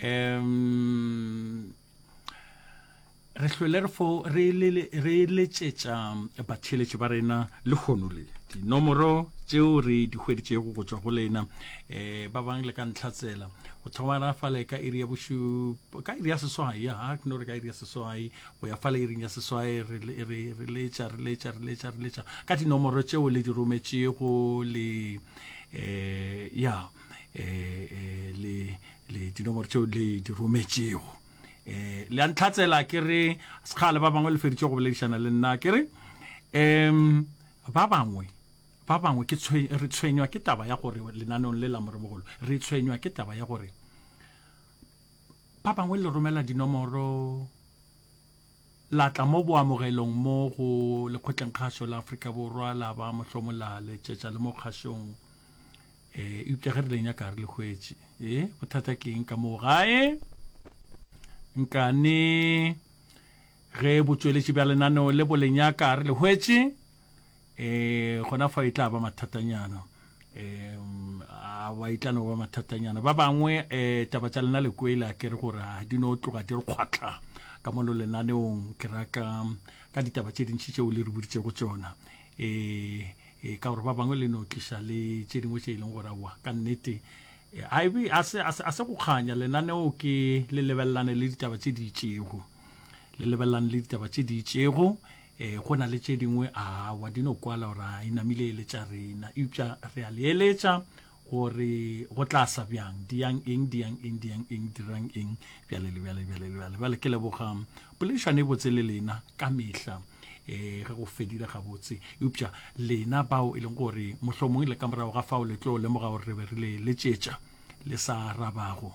um re hlwele re letšetša batheeletši ba rena lekgono le dinomoro tšeo re di hweditšego go tšwa go lena um ba bang le ka ntlha tsela go thoma ra fale ka iri ya bošupa ka iri ya seswai ya hak no re ka iri ya seswai go ya fale iring ya seswai re letša re letša re letša re letša ka dinomoro tšeo le di rometšego le eh ya eh, eh le le dinomoro tseo le di rometšego eh le a ntlhatsela ke re sekgale ba bangwe le feditse go boledišana le nna ke re um ba bangwe ba bangwe ke re tshwenywa ke taba ya gore lenanong le la moremogolo re tshwenywa ke taba ya gore ba bangwe le romela dinomoro la tla mo boamogelong mo go Lekgotlengkgašo la Afrika Borwa, la ba mohlomo la letšetša le mo kgašong. E, eupša ge re le nyaka re le hwetše. E, bothata ke eng ka moo gae? Nkane ge botšweletši bja lenaneo le bo le nyaka re le hwetše, um gona fa e tla ba mathatanyana um a ba e tla no ba mathatanyana ba bangwe um taba tša lena le kwele a kere gore a di no tloga di re kgwatlha ka mono lenaneong ke ra ka ka ditaba tše dintši tšeo le re boditsego tsona um ka gore ba bangwe le no tliša le tše dingwe tše e leng gore aowa ka nnete a se go kganya lenaneo ke le lebelelane le ditaba tše di itšego le lebelelang le ditaba tše di itšego um go na le tše dingwe a wa di no kwala gore a inamile ele tša rena eupša re a le eletša gore go tla sa bjang diyang eng diyang eng diyang eng dirang eng bjale le bjale bjale le bjale bjale ke leboga poledišano e botse le lena ka mehla eh ge go fedile gabotse eupša lena bao e leng gore mohlomongwe le ka morago ga fao le tlo lemoga gore re be re le letšetša le sa arabago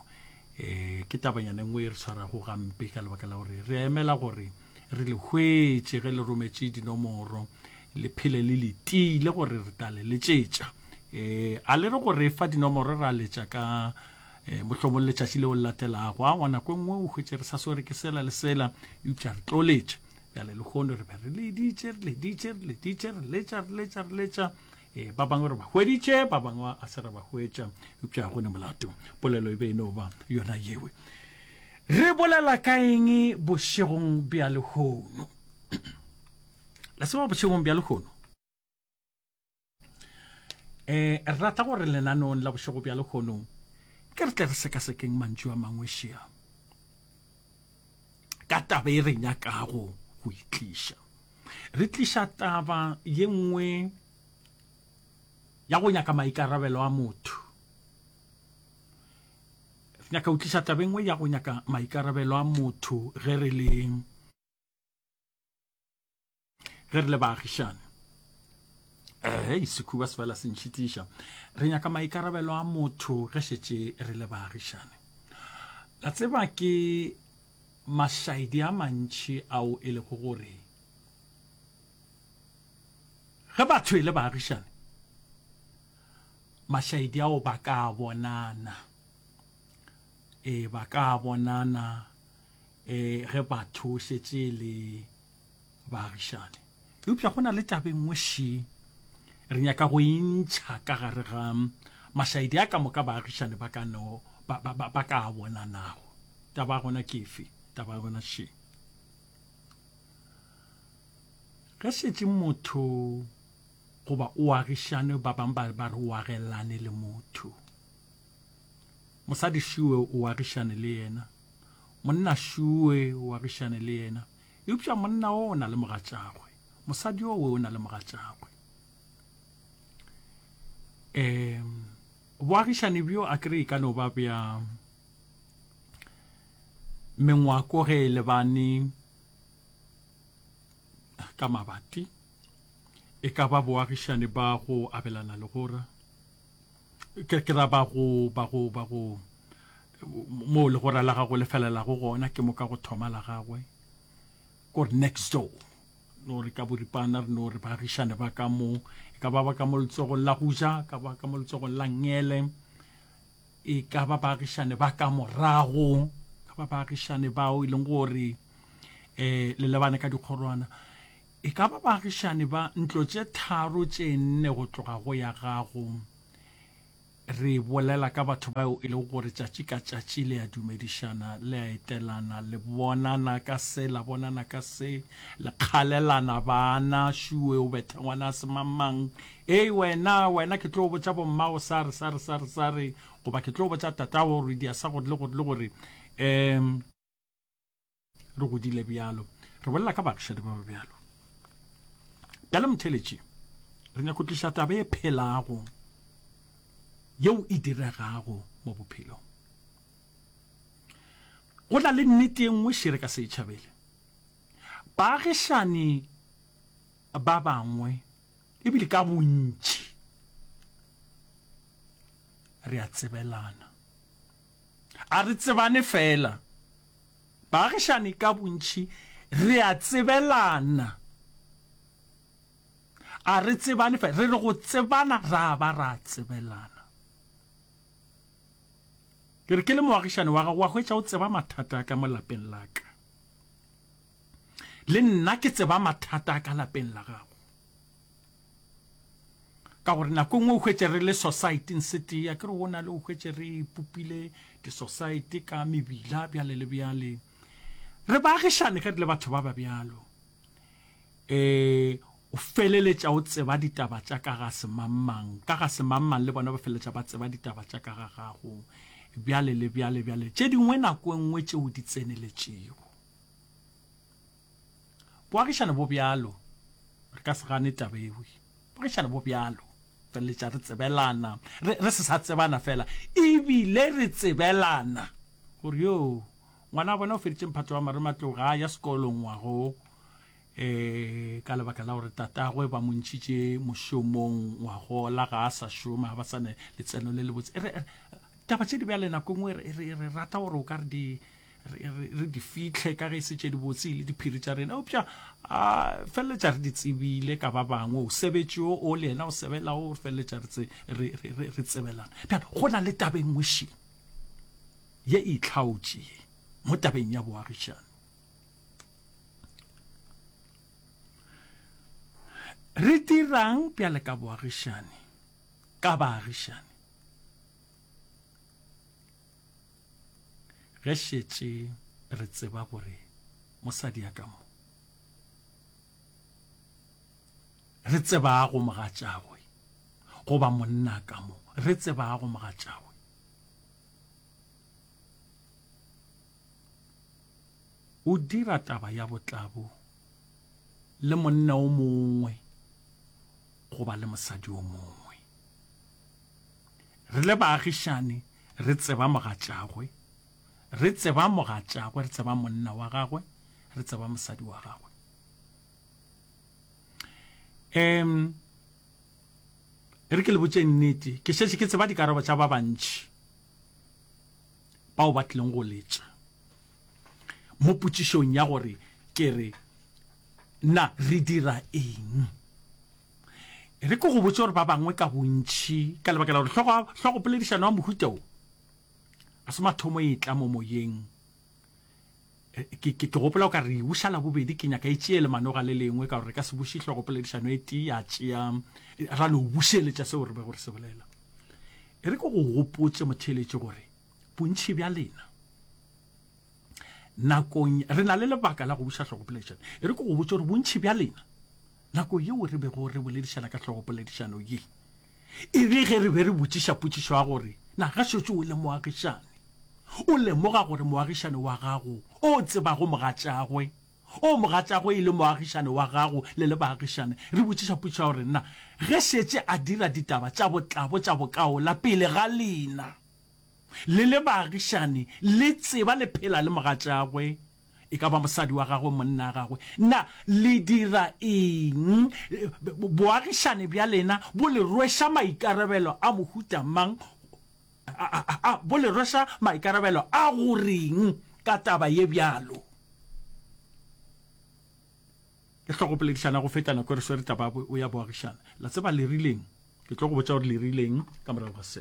e ke tabanyana nngwe e re tshwarago gampe ka lebaka la gore re emela gore re le hwetše ge le rometše dinomoro le phele le letile gore re tla le letšetša um a le re gore e fa dinomoro ra letša ka um mohlomong letšatši leo le latelago a ngwana ko nngwe o hwetše re sa swere ke sela le sela eupša re tlo letša bjale le kgone re be re leditše re leditše re leditše re letša re letša re letša E, ba bangwe re ba hweditše ba bangwe a se re ba hwetša eupša go ne molato polelo e be e no ba yona yewe re bolela ka eng bošegong bja lehono la seba bošegong bja lehono eh re rata gore lenanong la bošego bja lehono ke re tle re sekasekeng mantšu a mangwe šea ka taba e re nyakago go e tliša re tliša taba ye nngwe ya go nyaka maikarabelo a motho re nyaka go tliša taba e nngwe ya go nyaka maikarabelo a motho ge re le ge re le baagišane ehe sekhuba se fela se ntšhitiša re nyaka maikarabelo a motho ge šetše re le baagišane la tseba ke mašaedi a mantšhi ao e lego gore ge batho e le baagišane mašaedi ao ba ka bonana e ba ka bonana e ge batho šetše le baagišane eupša go na le tabe nngwe še re nyaka go e ntšha ka gare ga mašaedi a ka moka baagišane ba ka no ba, ba, ba, ba ka a bonanago taba gona kefe taba gona še ge šetse motho goba o agišane ba bangwe ba ba re o agelane le motho mosadi šiwe o agišane le yena monna šiwe o agišane le yena Eupša monna o o na le mogatšagwe, mosadi o we o na le mogatšagwe. E, boagišani bjo a kere e ka no ba bja mengwako ge e lebane ka mabati e ka ba boagišani ba go abelana legora ke ke ra ba go ba go ba go mo le go ra la gago le felela go gona ke mo ka go thoma la gagwe ko next door no re ka boripana re no re baagišane ba ka mo e ka ba ba ka mo letsogong la go ja ka ba ka mo letsogong la ngele e ka ba baagišane ba ka morago ka ba baagišane bao e leng gore eh le lebane ka dikgorwana E ka ba baagišani ba ntlo tše tharo tše nne go tloga go ya gago. Re bolela ka batho bao e lego gore tšatši ka tšatši le a dumedišana, le a etelana, le bonana ka se, la bonana ka se, le kgalelana bana, šuwe o betha ngwana a se mang-mang, Hei wena, wena ke tlo botša bommago sa re, sa re, sa re, sa re, goba ke tlo botša tatago gore o idia sa gore le gore le gore. Um. re godile bjalo re bolela ka bagišadi ba ba bjalo bjale motheletši re nyako tliša taba e phelago yeo e diregago mo bophelong go na le nnete e nngwe šere ka se e tšhabele baagišani ba bangwe ebile ka bontši re a tsebelana A re tsebane fela. Baagišani ka bontši re a tsebelana. A re tsebane fela. Re re go tsebana ra ba ra tsebelana. Ke re ke le moagišani wa gago wa hwetša o tseba mathata a ka mo lapeng la ka. Le nna ke tseba mathata a ka lapeng la gago. ka gore nako e nngwe o hwetše re le societeng se tee a ke re o na le o hwetše re ipopile di-society ka mebila bjale le bjale re baagišane ge re le batho ba ba bjalo um o feleletša o tseba ditaba tša ka ga semangmang ka ga semangmang le bona ba feleletša ba tseba ditaba tša ka ga gago bjale le bjale bjale tše dingwe nako e nngwe tšeo di tseneletšego Boagišane bo bjalo, re ka se gane taba ewe. Boagišane bo bjalo, feleletša re tsebelana, re, re se sa tsebana fela, ebile re tsebelana. Gore yo, ngwana wa bona o feditše mphato wa marematlou, ga a ya sekolong ngwago, um ka lebaka la gore tatagwe ba mo ntšhitše mošomong ngwagola, ga a sa šoma, ga ba sa ne letseno le lebotse. Re, re, taba tše di bjale nako e nngwe re, re, re rata gore o ka re di, re di fihle ka ge e se tše dibotse e le diphiri tša rena eupša a feleletša re di tsebile ka ba bangwe o sebetše o o le ena o sebelago re feleletša re tsebelana bjale go na le tabeng ngwešeng ye e itlhaotše ye mo tabeng ya boagišane re dirang bjale ka boagišane ka baagišane Ge šetše re tseba gore mosadi ya ka mo re tsebago mogatšagwe goba monna ka mo re tsebago mogatšagwe o dira taba ya botlabo le monna o mongwe goba le mosadi o mongwe Re le baagišani, re tseba mogatšagwe, re tseba mogatšagwe, re tseba monna wa gagwe, re tseba mosadi wa gagwe. Um e re ke le botšeng nnete, ke šetše ke tseba dikarabo tša ba bantši bao ba tlileng go letša mo potšišong ya gore ke re na re dira eng. E re ke go botse gore ba bangwe ka bontši ka lebaka la gore hlogo, hlogopoledišano ya mohuta wo a se mathomo e tla mo moyeng e, ke, ke, ke gopola o ka re buša la bobedi ke nyaka e tšee lemanoga le lengwe ka gore re ka se buše hlogopoledišano e tee ya tšea ra no bušeletša seo re be gore se bolela e re ke go gopotse motheeletše gore bontšhi bja lena nakong re na le lebaka la go buša hlogopoledišano e re ke go botse gore bontšhi bja lena Nako yeo re bego re boledišana ka hlogo poledišano ye e be ge re be re botšiša potšišo ya gore, Na gašetšo o le moagišani? O lemoga gore moagišani wa gago o tsebago mogatšagwe, o mogatšagwe e le moagišani wa gago le le baagišani? Re botšiša potšišo ya gore, Na ge šetše a dira ditaba tša botlabo tša bokaola pele ga lena, le le baagišani le tseba le phela le mogatšagwe? e ka ba mosadi wa gagwe, monna wa gagwe, na le dira eng? Boagišane bja lena bo le rweša maikarabelo a mohuta mang? A bo le rweša maikarabelo a go reng ka taba ye bjalo? Ke tlo go poledišana go feta nako e re swere taba ya boagišane. La tseba le rileng? Ke tlo go botša gore le rileng ka morago ga se.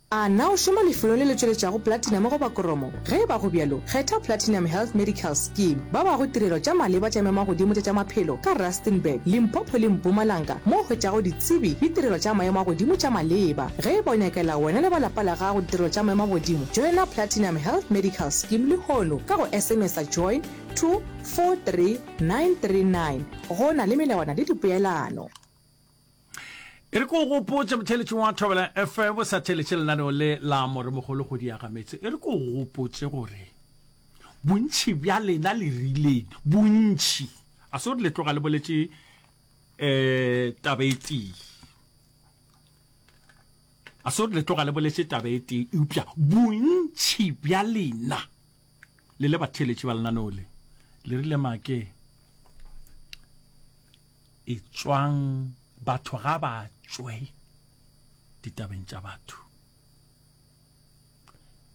A na o šoma lefelong le le tšweletšago platinum goba koromo? Ge e ba go bjalo, kgetha Platinum Health Medical Scheme. Ba bago tirelo tša maleba tša memagodimo tša tša maphelo ka Rustenburg, Limpopo le Mpumalanga mo o hwetšago ditsebi le tirelo tša maemo a godimo tša maleba. Ge e ba o nyakela wena le ba lapa la gago ditirelo tša maemo a godimo, joina Platinum Health Medical Scheme lehono ka go SMS-a join to 43939. Go na le melawana le dipeelano. e re ko go gopotse motheletšong wa thobela fm sa theletše lenaneo le la moremogolo go diaga metse e re ko go gopotse gore bontšhi bja lena le rileng bontšhi a se gore le tloga le boletše um eh, taba e tee a se gore le tloga le boletše taba e tee eupša bontšhi bja lena le le batheletše ba lenaneo le le rile make E tšwang batho ga ba tšwe ditabeng tša batho.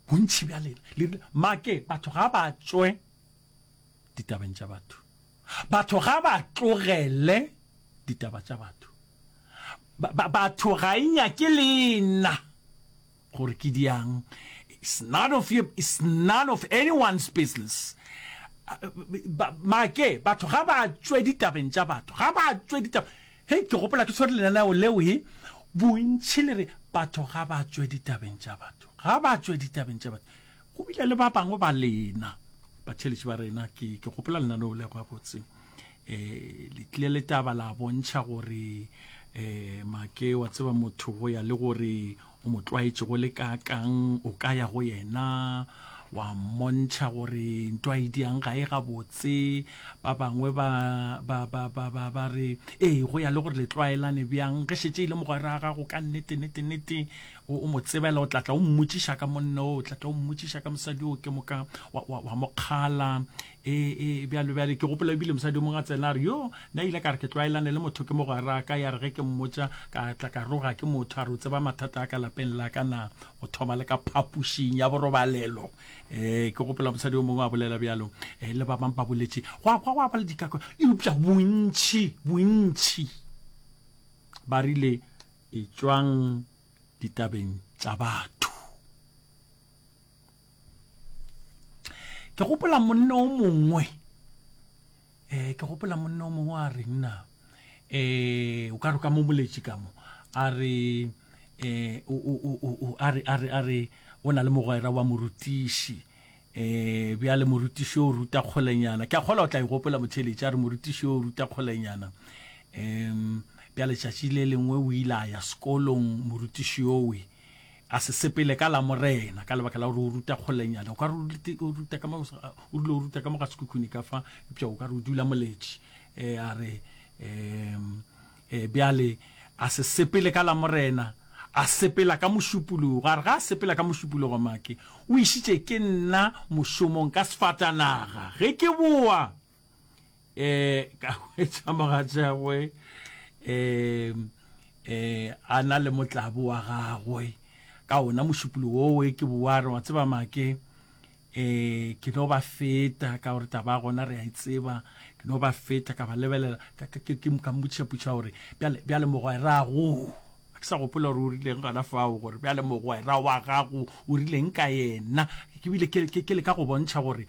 Bontši bja lena, make batho ga ba tšwe ditabeng tša batho. Batho ga ba tlogele ditaba tša batho. Batho ga e nyake lena. gore ke diang it's none of your it's none of anyone's business make batho ga ba tswe ditabeng tša batho ga ba tswe ditaba he ke gopola ke tshwere lenaneo leo he bontšhi le re batho ga ba tswe ditabeng tša batho ga ba tswe ditabeng tša batho go bile le ba bangwe ba lena batheletši ba rena ke gopola lenaneo lego ya botseng E, le tlile le taba la bontšha gore e, Make wa tseba motho go ya le gore o mo tlwaetše go le kaakang, o ka ya go yena wa mmontšha gore nto a e diang ga e gabotse. Ba bangwe ba, ba, ba, ba, ba, ba re, Ee, go ya le gore le tlwaelane bjang. Ge šetše e le mogwera wa gago ka nnete, nnete, nnete, o, o mo tsebela, o tla tla o mmotšiša ka monna oo, o tla tla o mmotšiša ka mosadi oo, ke moka wa, wa, wa mo kgala. ee ee bjalo bjale ke gopola ebile mosadi o mongwe a tsena a re yo nna ile ka re ke tlwaelane le motho ke mogwera ka ya re ge ke mmotsa ka tla ka roga ke motho a re o tseba mathata a ka lapeng la ka na go thoma le ka phapošing ya borobalelo um ke gopola mosadi o mongwe a bolela bjalo um le ba bangwe ba boletše go a kwa go a ba le dikakwa eupša bontšhi bontšhi ba rile e tswang ditabeng tša batho ke gopola monne o mongwe um ke gopola monne o mongwe a reng na um o ka re ka mo moletši ka mo a re um a re a re a re o na le mogwera wa morutiši um bjale morutiši o ruta kgolenyana ke a kgola o tla e gopola motheletši a re morutiši o ruta kgolenyana um bjale tšatši le lengwe o ile a ya sekolong morutiši owe a se sepele ka la morena ka lebaka la gore o ruta kgolenyana o ka o ruta ka o dule o ruta ka mo ga sekhukhuni ka fa eupša o ka re o dula moletši um a re um bjale a se sepele ka la morena a sepela ka mošupologo a re ga a sepela ka mošupologo make o išitše ke nna mošomong ka sefatanaga ge ke boa eh ka hwetša mogatšagwe eh eh a na le motlabo wa gagwe ka ona mošupolo woo e ke boare wa tseba make eh ke no ba feta ka gore taba gona re a e tseba ke no ba feta ka ba lebelela ka mmotšhaputšha gore bjale mogwerago a ke sa gopola gore o rileng gona fao gore bjale mogwera wa gago o rileng ka yena ke bile ke le ka go bontšha gore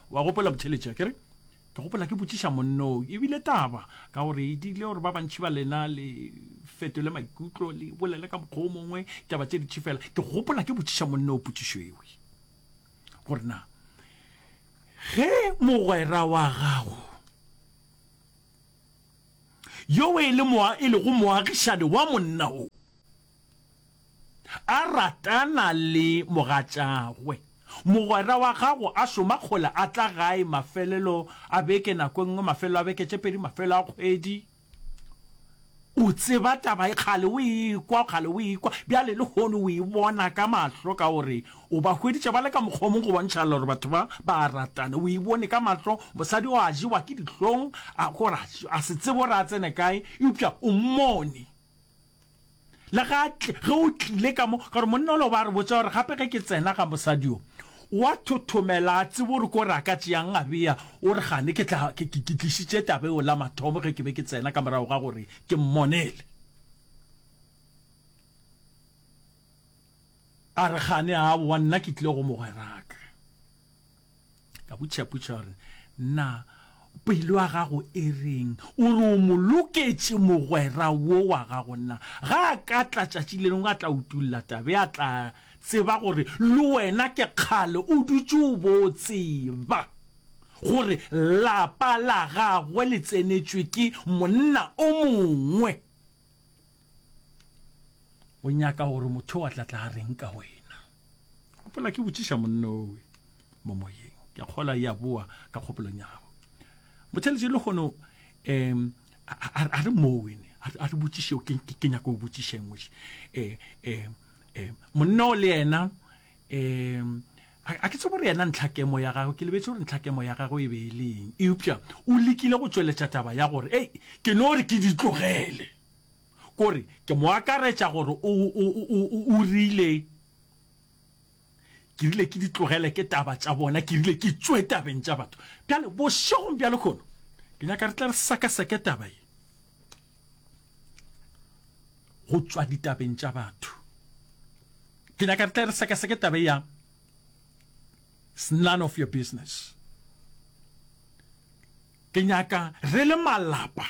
Wa gopola botheletše akere? Ke gopola ke botšiša monnoo, e bile taba, ka gore e dirile gore ba bantši ba lena le fetole maikutlo, le bolele ka mokgwa o mongwe taba tše ditši fela. Ke gopola ke botšiša monnoo potšišo ewe, gore na ge mogwera wa gago yo e le moa e lego moagišane wa monna o A ratana le mogatšagwe. Mogwera wa gago a šoma kgole a tla gae mafelelo a beke, nako e nngwe mafelelo a beke tše pedi, mafelelo a kgwedi. O tseba taba ye, kgale o e kwa, kgale o e kwa, bjale lehono o e bona ka mahlo ka gore o ba hweditše ba le ka mokgwa o mongwe go bontšha gore batho ba, ba a ratana. O e bone ka mahlo, mosadi o a jewa ke dihlong, a, gore a se tsebe gore a tsene kae, eupša o mmone. Le ga ge o tlile ka mo, ka gore monna ole o ba re botša gore gape ge ke tsena ga mosadi yo, o a thothomela, a tsebe gore ko re a ka tšeang a bea, o re gane ke tla, ke, ke, ke tlišitše taba eo la mathomo ge ke be ke tsena ka morago ga gore ke mmonele. A re gane, aowa, nna ke tlile go mogweraka. ka butšhaputšha gore na pelo ya gago e reng o re o mo loketše mogwera wo wa gago na ga a ka tla tšatši le lengwe a tla utulla tabe a tla tseba gore le wena ke kgale o dutše o bo tseba gore lapa la gagwe le tsenetšwe ke monna o mongwe o nyaka gore motho wa tlatla a reng ka wena gopola ke botšiša monnowe mo moyeng ke kgola ya boa ka kgopolong ya gago motheletše le kgono um a re mowene a re botšiše ke nyako o botšišeng ngwese um um um monno le yena um a ke tse gore yena ntlhakemo ya gagwe ke lebetse gore ntlhakemo ya gagwe e be e leng eupša o lekile go tšweletša taba ya gore ei ke no re ke di tlogele Ke gore, ke mo akaretša gore o, o, o, o, o rile, Ke rile ke di tlogele ke taba tša bona, ke rile ke tšwe tabeng tša batho. Bjale, bošegong bja lekhono, ke nyaka re tle re sekeseke taba ye go tšwa ditabeng tša batho. Ke nyaka re tle re sekeseke taba ye ya It's none of your business. Ke nyaka re le malapa.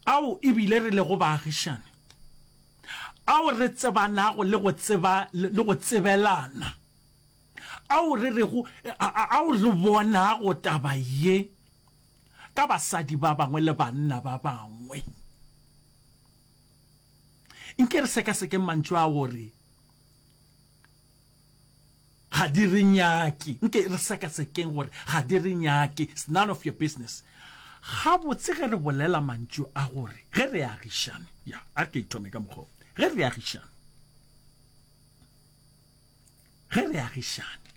ao e bile re lego baagišani, ao re tsebanago le go tseba le go tsebelana, ao re rego ao re bonago taba ye ka basadi ba bangwe le banna ba bangwe. Nke re sekasekeng mantšu a go re. Ga di re nyake. Nke re sekasekeng gore ga di re nyake. It's none of your business. Gabotse ge re bolela mantšu a gore ge re agišane, ya, a re ke ithome ka mokgwa o, ge re agišane, ge re agišane,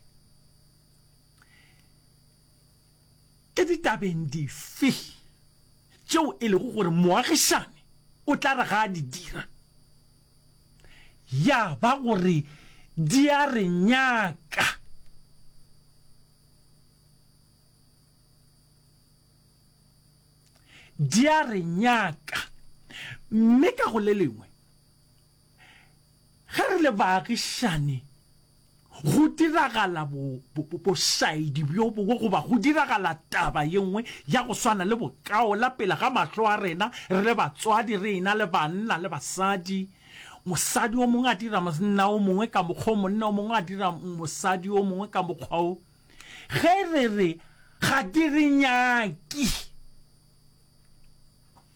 Ke ditabeng dife tšeo e lego gore moagišani o tla re ga a di dira ya ba gore di a re nyaka? Di a re nyaka, mme ka go le lengwe, Ge re le baagišani, go diragala bošaedi bjo bongwe goba go diragala taba ye nngwe ya go swana le bokaola pele ga mahlo a rena, re le batswadi re e-na le banna le basadi, mosadi o mongwe a dira monna o mongwe ka mokgwa o, monna o mongwe a dira mosadi o mongwe ka mokgwa o, ge re re ga di re nyaki,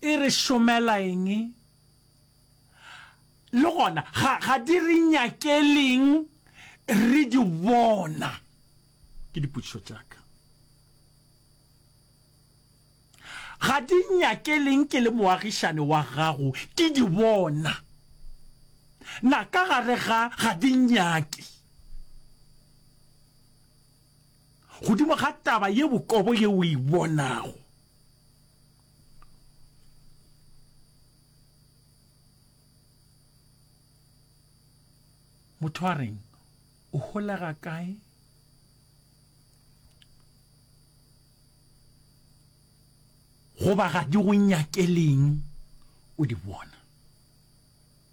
e re šomela eng? Le gona, ga di re nyakeleng re di bona? Ke dipotšišo tša ka. Ga di nyakeleng ke le moagišane wa gago ke di bona? Na ka gare ga ga di nyake? Godimo ga taba ye bokobo ye o e bonago, motho a reng o holega kae goba ga di go nyakeleng o di bona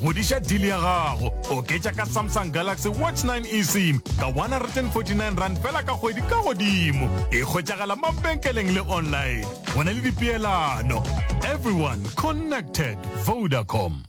Godiša deal ya gago. Oketša ka Samsung Galaxy Watch 9 eSIM ka R149 fela ka kgwedi ka godimo. E hwetšagala mabenkeleng le online. Go na le dipeelano. Everyone connected. Vodacom.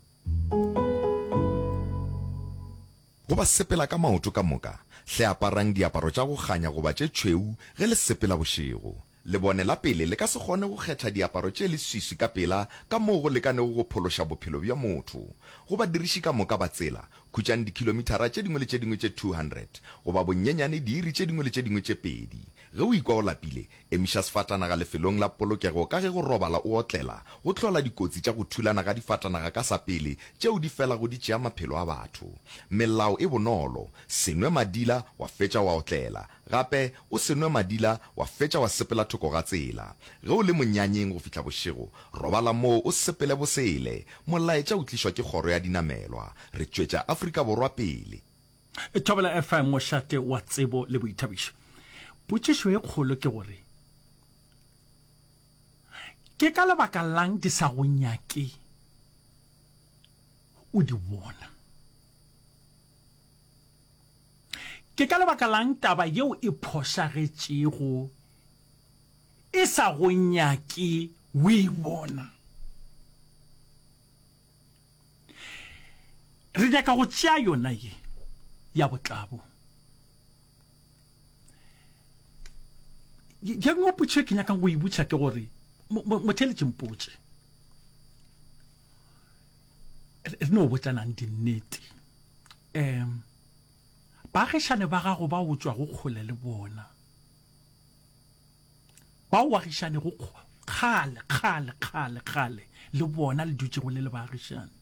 Go ba sepela ka maoto ka moka, hle aparang diaparo tša go kganya goba tše tšhweu ge le sepela bošego. Lebone la pele le ka se kgone go kgetha diaparo tše leswiswi ka pela ka moo go lekanego go phološa bophelo bja motho. Go badiriši ka moka ba tsela, khutšang dikhilomithara tše dingwe le tše dingwe tše 200, goba bonnyenyane diiri tše dingwe le tše dingwe tše pedi. Ge o ikwa o lapile, emiša sefatanaga lefelong la polokego ka ge go robala o otlela go hlola dikotsi tša go thulana ga difatanaga ka sa pele tšeo di felago di tšea maphelo a batho. Melao e bonolo, Se nwe madila wa fetša wa otlela. Gape o se nwe madila wa fetša wa sepela thoko ga tsela. Ge o le monyanyeng go fihla bošego, robala moo o sepele bosele. Molaetša o tlišwa ke kgoro ya dinamelwa. Re tšwetša Afrika Borwa pele. Thobela FM, mošate wa tsebo le boithabišo. Potšišo e kgolo ke gore, Ke ka lebaka la'ng di sa go nyake o di bona? Ke ka lebaka la'ng taba yeo e phošagetšego e sa go nyake o e bona? Re nyaka go tšea yona ye ya botlabo. Ye nngwe potšo e ke nyakang go e butša ke gore, Motheeletši, mpotše. Re no botlanang dinnete. Um baagišane ba gago ba o tšwago kgole le bona, bao o agišanego kgale, kgale, kgale, kgale le bona le dutšego le le baagišane,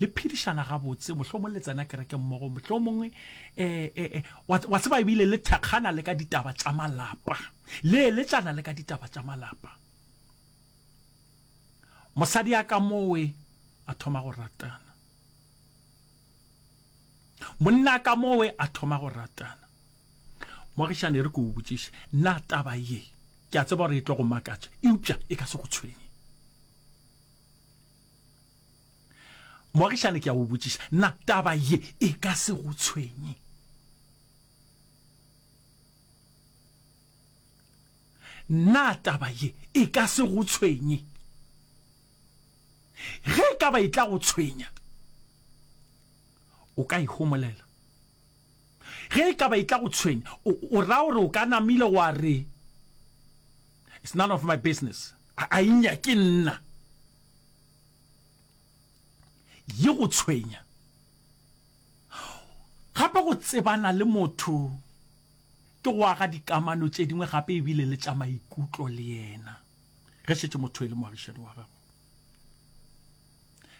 le phedišana gabotse, mohlomong le tsena kereke mmogo, mohlomong um wa tseba ebile le thekgana le ka ditaba tša malapa, le eletšana le ka ditaba tša malapa. Mosadi a ka mowe a thoma go ratana. Monna a ka mowe a thoma go ratana. Moagišane re ko o botšiše, na taba ye ke a tseba gore e tlo go makatša eupša e ka se go tshwenye. Moagišane ke a o botšiša, na taba ye e ka se go tshwenye. Na taba ye e ka se go tshwenye? Ge e ka ba e tla go tshwenya, o ka e homolela. Ge e ka ba e tla go tshwenya, o ra gore o ka namile wa re, It's none of my business. A e nyake nna. Ye go tshwenya gape go tsebana le motho Ke go aga dikamano tše dingwe gape e bile le tša maikutlo le yena ge šetše motho e le moagišani wa gago.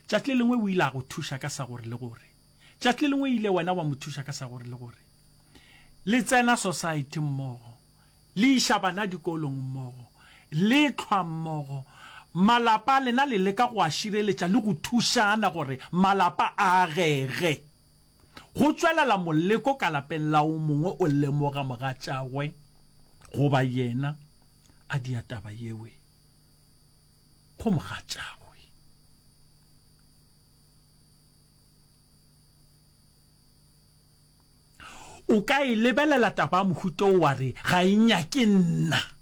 Tšatši le lengwe o ile a go thuša ka sa gore le gore. Tšatši le lengwe ile wena wa mo thuša ka sa gore le gore. Le tsena sosaete mmogo, le iša bana dikolong mmogo, le hlwa mmogo. Malapa a lena le leka go a šireletša le go thušana gore malapa a agege. Go tšwelela moleko ka lapeng la o mongwe o lemoga mogatšagwe goba yena a dia taba yeo go mogatšagwe. O ka e lebelela taba ya mohuta o wa re ga e nyake nna.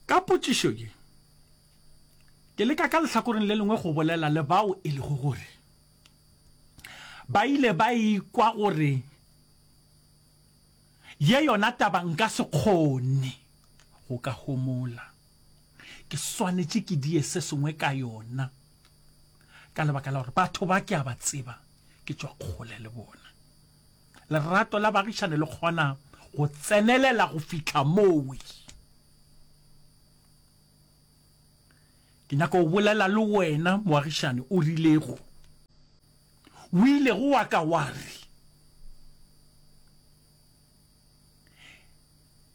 Ka potšišo ye, ke leka ka lehlakoreng le lengwe go bolela le bao e lego gore ba ile ba ikwa gore ye yona taba nka se kgone go ka homola, ke swanetše ke die se sengwe ka yona ka lebaka la gore batho ba ke a ba tseba, ke tšwa kgole le bona. Lerato la baagišane le kgona go tsenelela go fihla mowe. Ke nyaka go bolela le wena moagišane o rilego, o ilego wa ka wa re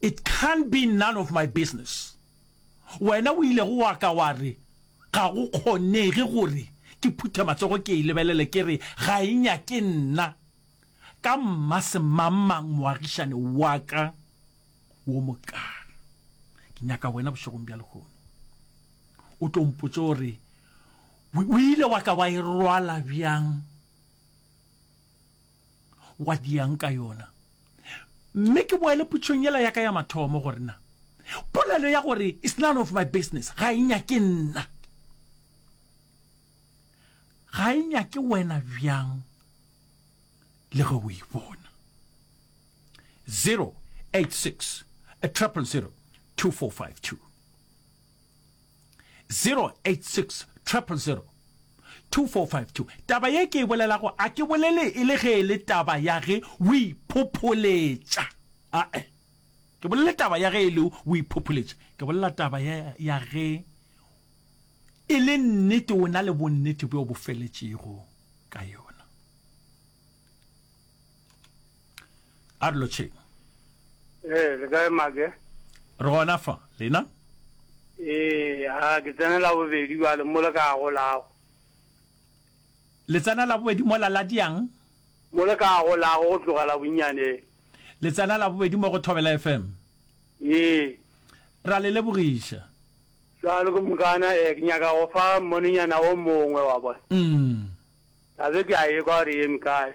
It can't be none of my business. Wena o ilego wa ka wa re ga go kgonege gore ke phuthe matsogo ke e lebelele ke re ga e nyake nna ka mmasemangmang moagišane wa ka wo mokana. Ke nyaka wena bošegong bja lehono o tlo mpotse gore o ile wa ka wa e rwala bjang wa diang ka yona. Mme ke boele putšong yela ya ka ya mathomo gore na polelo ya gore it's none of my business ga e nyake nna, ga e nyake wena bjang le ge o e bona. 086 000 2452. 086 000 2452 Taba ye ke e bolelago a ke bolele e le ge e le taba ya ge o iphopholetša ae ke bolele taba ya ge e le o iphopholetša ke bolela taba ya, ya ge e le nnete o na le bonnete bjo bo feletšego ka yona a re lotšheng ee le kae make re gona fa lena ee a ke tsenela bobedi bale mo le ka golago le tsenela bobedi mo la diang mo le ka golago go tlogela bonnyane le tsenela bobedi mo go thobela fm ee ra le lebogiša jalo ke mokana ee ke nyaka go fa mmonenyana o mongwe wa bona mm. a be ke a ye kwa re yeme kae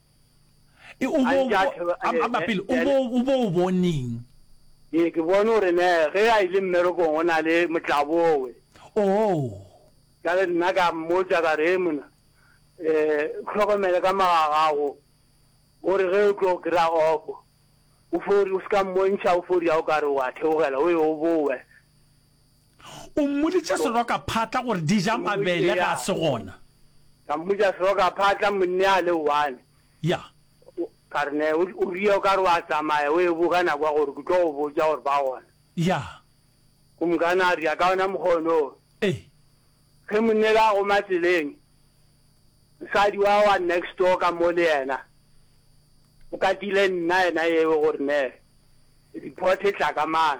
E, o bo, amba pele, o bo, o bo o boneng? Ee, ke bone gore ne ge a ile mmerekong go na le motlabowe. Oo. Jale nna ka mmotsa ka re, mona, um hlokomele ka magagago, gore ge o tlo kry-a off, o fo, o se ka mmontšha o fo ria o ka re wa theogela, o ye o bowe. O mmoditše serokaphatla gore di ja mabele ge a se gona. Ka mmoditša serokaphatla, monne a le one. Ya. Ka re, Ne, o ria o ka re wa tsamaya o ebo ka nako ya gore ke tlo go botša gore ba gona. Ya. Kumkana a ria ka ona mokgwa ono. Ee. Ge monne la goma tseleng, mosadi wa wa next door ka mo le yena, o katile nna yena yeo gore ne, report e tla ka mang.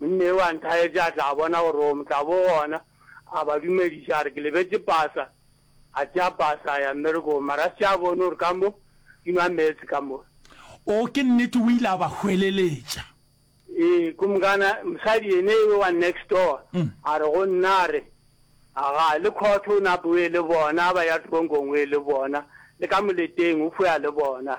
Monna yo a nthaetša a tla bona gore o tla bo gona, a ba dumediša a re, Ke lebetše pasa. A tšea pasa a ya mmerekong, mara a se a bone gore ka mo di nwa meetse ka mo. Oo, ke nnete, o ile a ba hweleletša. Ee, Kumkana, mosadi yene yo wa next door, a re go nna, a re, Aga, le khotho o nape o ye le bona, a ba ya tronko nngwe le bona, le ka moleteng o fo ya le bona.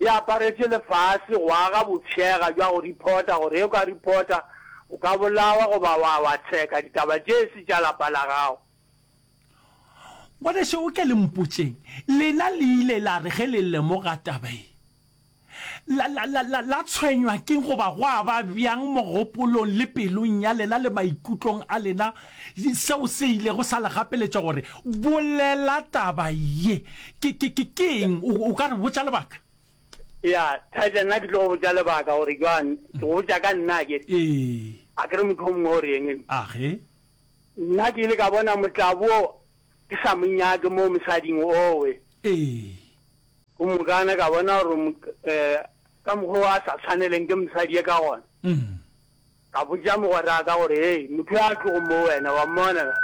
e aparetše lefase go aga botšhega bja go reporta gore ge o ka reporta o ka bolawa goba wa wa tsheka ditaba tše e se tša lapa la gago. Ngwaneso o ke le mpotšeng, lena le ile la re ge le lemoga taba ye la, la, la, la, la tshwenywa keng goba gwa ba bjang mogopolong le pelong ya lena le maikutlong a lena? Seo se ilego sa le gapeletša gore, Bolela taba ye. Ke, ke, ke, ke eng? O, o ka re botša lebaka? Ya, Thatša, nna ke tlo go botša lebaka gore jwang. Ke go botša ka nna ke. Ee. A ke re motho o mongwe o re eng? Age. Nna ke ile ka bona motlabo o ke sa mo nyake mo mosading owe. Ee. Go mokana ka bona gore, eh, ka mokgwa o a sa tshwaneleng ke mosadi ye ka gona. Mm. Ka botša mogweraka gore, Hei, motho yo a tlogo mo wena, wa mmona na?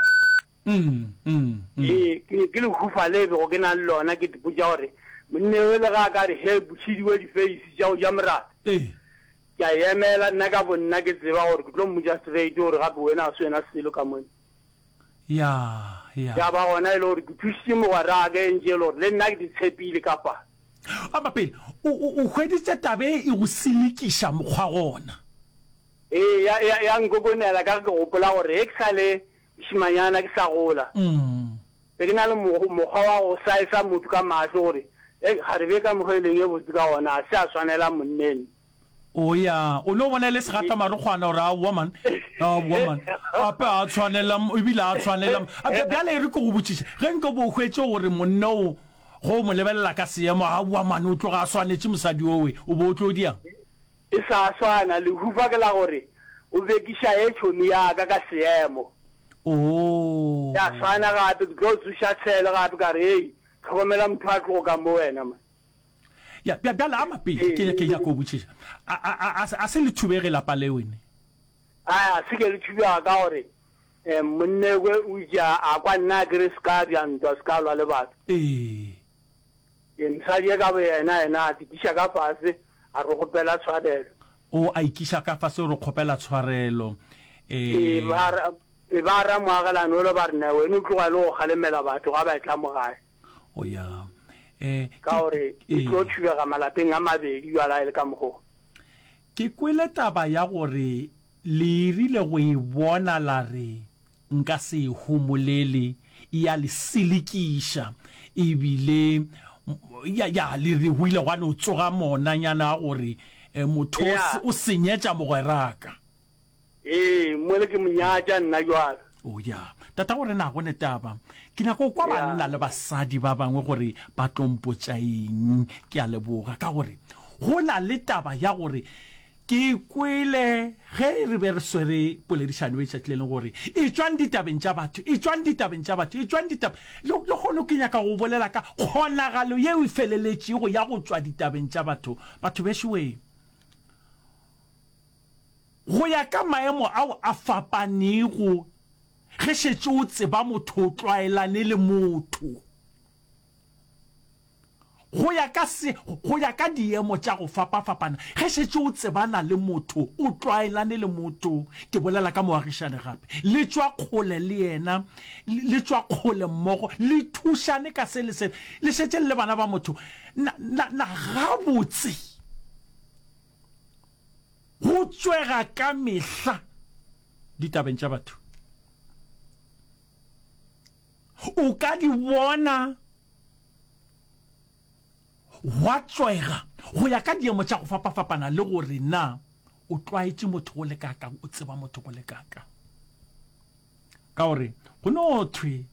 Ee, ke ne ke le hufa le bego ke na le lona, ke dipotša gore, Monna yo le ge a ka re, Hei, bošidi we difeisi tša go ja morata, ke a emela, nna ka bonna ke tseba gore ke tlo mmotša straight gore gape wena ga se wena selo ka monna. Ya, ya. Ya ba gona e le gore ke thusitše mogweraka e ntše e le gore le nna ke di tshepile ka fa. Ama pele, o, o, o hweditše taba e e go selekiša mokgwa gona. Ee, ya, ya, ya nkokonela ka ge ke gopola gore ge ke sa le mošemanyana ke sa gola, be ke na le mo, mokgwa wa go saesa motho ka mahlo gore, Hei, kgarebe ka mokgwa e leng e botse ka gona, ga se a swanela monneno. O ya, o no bona e le segatamarokgwana gore aowa man, aowa man, gape a tshwanela, ebile a tshwanela. A bja- Bjale e re ke go botšiša, ge nke bo hwetše gore monna o go mo lebelela ka seemo, aowa man, o tloga a swanetše mosadi owe, o bo o tlo diang? E sa swana, lehufa ke la gore o bekiša ye tšhomi ya ka ka seemo. Oo. Ya swana gape, ke tlo tsoša tshele gape ka re, Hei, tlhokomela motho a tlogo ka mo wena man. Ya, bja, bjale ama pele, ke, ke nyaka go botšiša. A, a, a, a se- a se le thubege lapa leo ne. A, a se ke le thubega ka gore eh, monnekwe o itše a, a kwa nna a kere se ka bja ntwa, se ka lwa le batho. Ee. Ee, mosadi ye ka boyena yena a tikiša ka fase, a re kgopela tshwarelo. O a ikiša ka fase, o re kgopela tshwarelo. E Ee. ba ra, e ba ramoagelane ole ba re, Nna wena o tloga e le go kgalemela batho ga ba etla mo gae. o ya eh, ka gore e eh. tlo thubega malapeng a mabedi jala e le ka mogo ke kwele taba ya gore le irile go e bona la re nka se e homolele ya le selekiša ebile ya ya le re go ile gwa no tsoga monanyana a gore eh, motho o senyetša mogweraka Ee, mole ke mo nyatša nna jwale. O ya. Tata gore na go le taba. Ke nyaka go kwa Ya. banna le basadi ba bangwe gore ba tlo mpotša eng. Ke a leboga ka gore go na le taba ya gore ke e kwele ge re be re swere poledišano e tšatši le leng gore e tšwang ditabeng tša batho, e tšwang ditabeng tša batho, e tšwang ditab-. Le le kgono ke nyaka go bolela ka kgonagalo yeo e feleletšego ya go tšwa ditabeng tša batho. Batho bešowe! Go ya ka maemo ao a fapanego, ge šetše o tseba motho o tlwaelane le motho go ya ka se, go ya ka diemo tša go fapafapana, ge šetše o tsebana le motho o tlwaelane le motho, ke bolela ka moagišane gape, le tšwa kgole le yena, le tšwa kgole mmogo, le thušane ka se le se, le šetše le le bana ba motho, na, na, na gabotse go tswega ka mehla ditabeng tša batho o ka di bona gwa tswega go ya ka diemo tša go fapafapana le gore na o tlwaetše motho go le kakang o tseba motho go le kakang ka gore go no thwe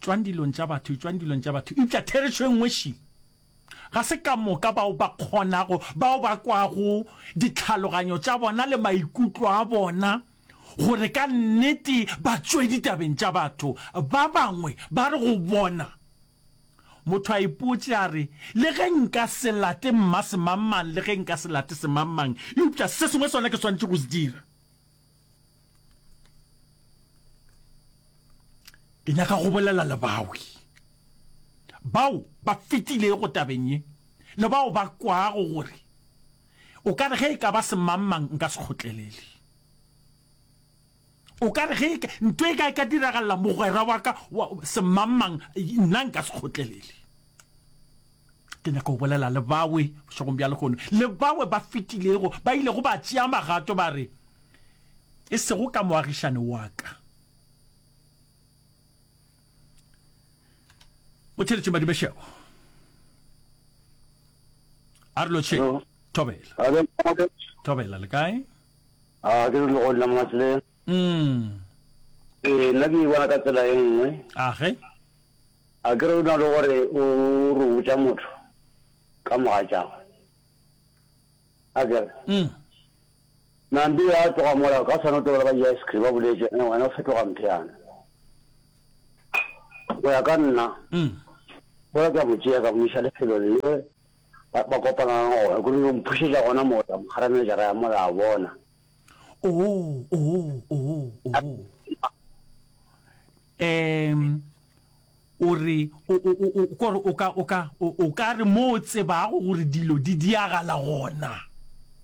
tswang dilong tša batho tswang dilong tša batho eupša therešo e nngwe šile Ga se ka moka bao ba kgonago, bao ba kwago ditlhaloganyo tša bona le maikutlo a bona gore ka nnete ba tšwe ditabeng tša batho. Ba bangwe ba re go bona. Motho a ipotše a re, Le ge nka se late mmasemangmang, le ge nka se late semangmang, eupša se sengwe sona ke swanetše go se dira. ke nyaka go bolela le bawi bao ba fetilego tabeng ye le bao ba kwago gore o ka re ge e ka ba semangmang nka se kgotlelele o ka re ge e nto e ka e ka diragalela mogwera wa ka semangmang nna nka se kgotlelele Ke nyaka go bolela le bawe bošegong bja lehono, le bawe ba fetilego ba ilego ba tšea magato ba re, E sego ka moagišane wa ka. O theletše madibešego. A re lotšhe. Thobela. Thobela, le kae? A ke re legodila mo matleng. ee nna ke e bona ka tsela e nngwe age a ke re o na le gore o re botša motho ka mogatšago a kere mm. nampi ya tloga mola ka swana o tobela ba ja ice cream ba boletse ene wena o fetoga mpheana go ya ka nna mm. o ya ka motšea ka moisa lefelo le ba kopana gona gore yo mphušetša gona mola mogaramejara ya mola a bona oh oh oh oh um o re kore o ka o ka o ka re mo o tsebago gore dilo di diagala gona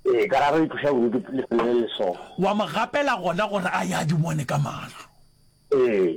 ee ka ra re itlosa bodutu lefelo le leso wa mo gapela gona gore a ya di bone ka mahlo ee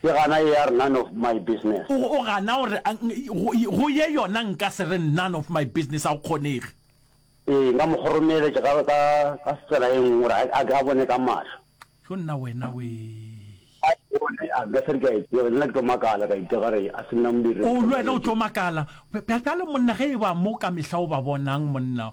Ke gana e ar none of my business. O o gana go re ang go go ye yona nka se re none of my business a go kgonege. Ee, nka mo kgoromeletša ka ka ka tsela e nngwe gore a a ke a bone ka mahlo. Yo nna wena wee. A e bone a nka se re ke a e tseba, nna ke tlo makala ka itira gare a se nna modiri. O le wena o tlo makala. Bj bjale monna ge e ba mo ka mehla o ba bonang monna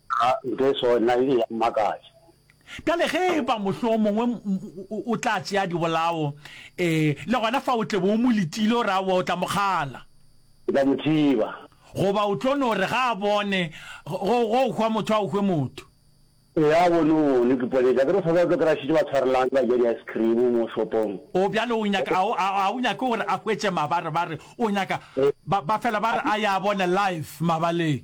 Ga ntho e swana na e be ya mmakatša. Bjale ge e ba mohlomongwe o tla tšea dibolao, ee, le gona fa o tle be o mo letile, o re, Aowa, o tla mo kgala. O tla mo thiba. Goba o tlo no re, Ga a bone, go, go hwa motho a o hwe motho. Ee, a bone, o bone, ke ponetša. Akere o sa tswa o tlo kry-a šetše ba tshwarelang ba ja di-ice cream mo shopong. Oo, bjale o nyaka, a o, a, a o nyake gore a hwetše mabarebare, o nyaka, ba, ba fela ba re a ya bona live mabaleng.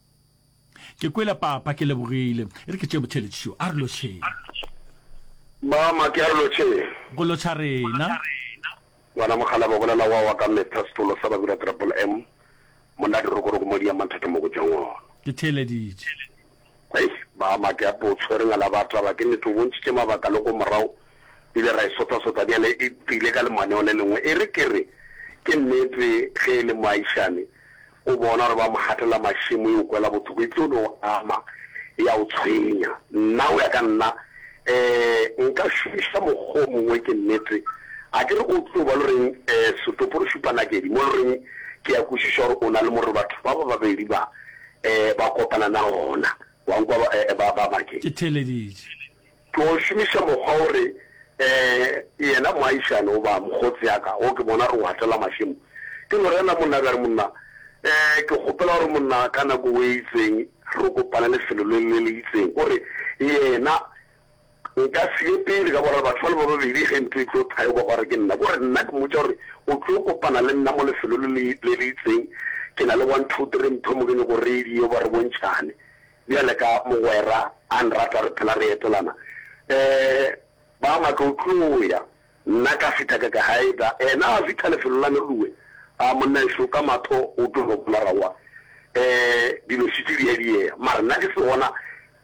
Ke kwele papa, ke lebogile. E re ke tšee botheletši šo. A re lotšheng. Mama, ke a re lotšheng. Go lotšha rena. Ngwana mokgalaba, bolela wa wa ka metha, setolo sa Babira Triple M, monna Dirokoroko mo Diamantha ke mo go tšwang gona. Ke theeleditše. Hei, mama, ke ape o tshwere ngala ba taba. Ke nnete o bontšhitše mabaka le ko morago, re ile ra e sotha-sotha. Bjale e tlile ka lemaneo le lengwe. E re ke re, ke nnete ge e le moagišane, O bona gore ba mo gatela mašemo, e o kwela bothoko, e tlo no o ama, e a o tshwenya. Nna, go ya ka nna, um nka šomiša mokgwa o mongwe, ke nnete. A ke re o tlo ba lo reng, um setopo re šupa nakedi, mo lo reng ke ya kwešiša gore o na le mo re batho ba ba babedi ba, um ba kopana na gona. Wa nkwa, ba, ba, ba, ba ke. Ke theeleditše. Tlo šomiša mokgwa wo re, Ee, yena moagišane goba mokgotse ya ka, wo ke bona gore o hatela mašemo. Ke Lorena, monna ya ka. Re, Monna, ee, ke kgopela gore, monna, ka nako wo e itseng re kopane lefelo le, le le itseng. O re, Yena, nka se ye pele ka boraro batho bale ba babedi ge ntlo e tlo thayokwa gwa re ke nna. O re, Nna ke mmotša gore o tlo kopana le nna mo lefelo le le, le le itseng. Ke na le one, two, three mphe mokene go radio ba re bontšhane. Bjale ka mogwera a nrata re phela re etelana eh Ba maka o tlo ya nna ka fita ka ka haida ena a fita lefelo la Nolue a monnaeso ka matho o tlo no bona rawa eh dilo šetše di a diea mare nna ke se gona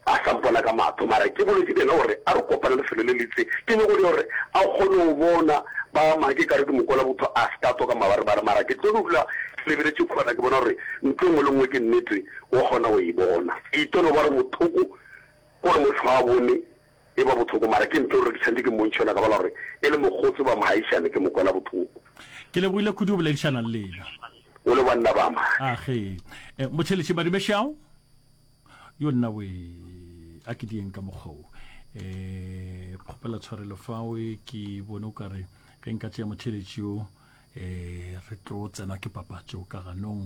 a sa mpona ka matho mare ke boletše le ena gore a re kopane lefelo le litse ke nyoko le gore a kgone go bona Ba maka e kare ke mokwela botho a se ka tswa ka mabarebare mara ke tlo dula ke lebeletše khona ke bona gore ntho e nngwe le nngwe ke nnete O kgona go e bona. E tlo no ba re bothoko gore motho a bone e ba bothoko mara ke ntlo gore ke tshwanetse ke mmontšhe yona ka bala gore e le mokgotse ba mogaishane ke mo kwela bothoko. Ke lebohile kudu go boledišana le lena. O le banna ba ma. A ge. Eh, Motšheletši Madibešao? Yo nna we, a ke dieng ka mokgwa o. Eh, kgopela tshwarelo fawe ke bone o kare ge nka tšea motšheletši o eh re tlo tsenwa ke papatšo ka ganong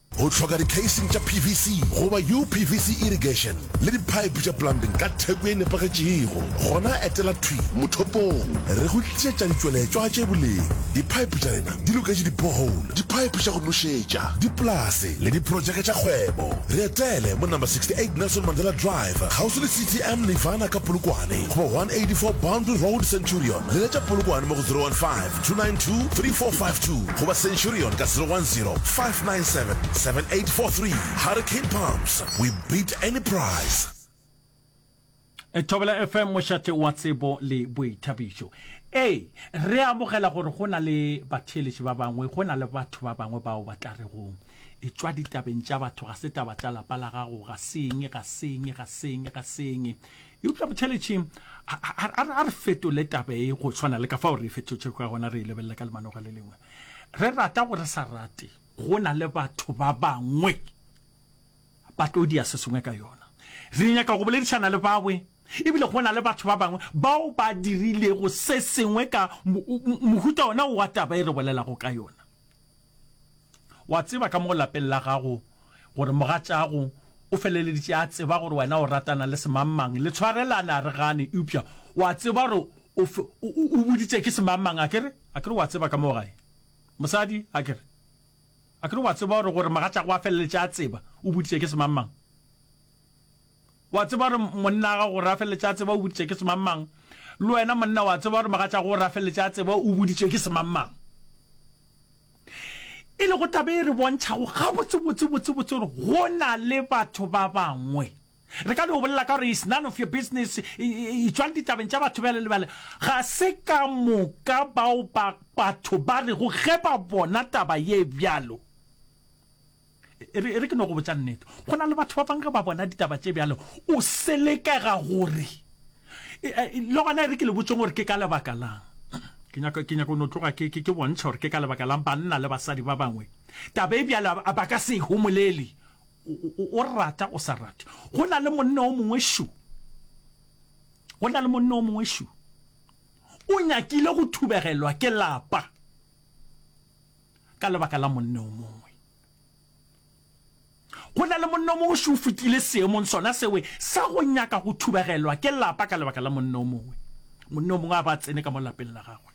Go hloka dikheising tša PVC goba UPVC irrigation le diphaephe tša plumbing ka theko e nepagetšego, gona etela thwi mothopong re go tlišetša ditšweletšwa tše boleng. Diphaephe tša rena di loketše di-borehole, diphaephe tša go nošetša, dipolase le diprotšeke tša kgwebo. Re etele mo Number 68 Nelson Mandela Drive, kgauswi le CTM Nirvana ka Polokwane, goba 184 Boundary Road, Centurion. Leletša Polokwane mo go 015 292 3452 goba centurion ka 010 597 7843 hurricane pumps we beat any price E Thobela FM mošate wa tsebo le boithabišo. Ee, re a bogela gore go na le batheeletši ba bangwe, go na le batho ba bangwe bao ba tla rego, e tšwa ditabeng tša batho, ga se taba tša lapa la gago, ga seng, ga seng, ga seng, ga seng. eupša botšheletšeng a re fetole taba e go tshwana le ka fao re e fetotše ka gona re e lebelela ka lemanoga le lengwe re rata go re sa rate go na le batho ba bangwe ba tlo dia se sengwe ka yona re nyaka go boledišana le bawe ebile go na le batho ba bangwe bao ba dirilego se sengwe ka mohuta ona wa taba e re bolelago ka yona O a tseba ka mo lapeng la gago gore mogatšago o feleleditše a tseba gore wena o ratana le semangmang, le tshwarelane a re gane, eupša o a tseba gore o, o, o boditše ke semangmang, a ke re? A ke re o a tseba ka mo gae? Mosadi, a ke re? A ke re o a tseba gore, gore mogatšago a feleletše a tseba o boditše ke semangmang? O a tseba gore monna wa gago o rafeletša a tseba o boditše ke semangmang? Le wena monna o a tseba gore mogatšago o rafeletše a tseba o boditše ke semangmang? E lego taba e re bontšhago gabotsebotse botsebotse gore go na le batho ba bangwe re ka no bolela ka gore is none of your business itswang ditabeng tša batho bjale le bjale ga se ka moka bao ba batho ba rego ge ba bona taba ye bjalo E re ke no go botša nnete, go na le batho ba bang ge ba bona ditaba tše bjalo, o selekega gore le gona e re ke le botšeng gore ke ka lebaka lang. Ke nyaka ke nyaka no tloga ke ke bontšha gore ke ka lebaka lang banna le basadi ba bangwe taba e bjalo ba ka se e homolele. O rata o sa rate, go na le monna o mongwe šo, go na le monna o mongwe šo o nyakile go thubegelwa ke lapa. ka lebaka la monne o mongwe go na le monne o mongwe se o fetile seemong sona sewe sa go nyaka go thubagelwa ke lapa ka lebaka la monne o mongwe monne o mongwe a ba tsene ka mo lapeng la gagwe